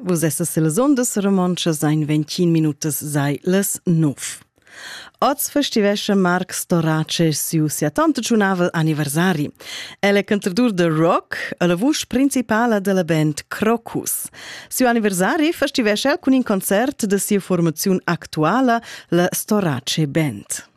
Vus essas las ondas romontschas ein 21 minutas sei les 9. Oz festivesce Marc Storace siu sia tanta giunavel anniversari. El è cantadur de rock e la vusch principala della band Crocus. Siu anniversari festivesce el cun in concert de sia formaziun actuala, la Storace Band.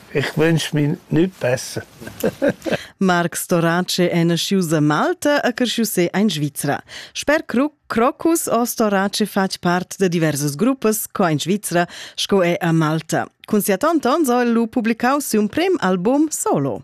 Ich wünsch mir nichts besser. Marc Storace è nascius a Malta e cresciu se in Svizzera. Sper Crocus o Storace fatg part de diversas gruppas co in Svizzera sco è a Malta. Cun sia tanta ans ha el lu publicau siu prim album solo.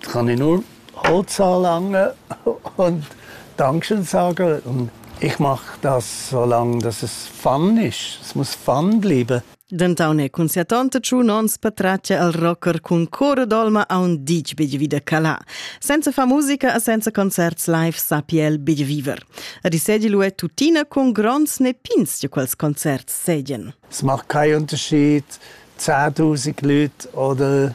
kann ich nur Halt sagen und Dankeschön sagen. Und ich mache das so lange, dass es Fun ist. Es muss Fun bleiben. Denton è consiatante ciù non spatraccia al rocker cun cora d'olma a un dic big vida calà. Senza fa musica e senza concerts live sappi el big viver. Risedi lu è tuttina con grons ne pins di quels concerts sedien. Es macht keinen Unterschied, 10.000 Leute oder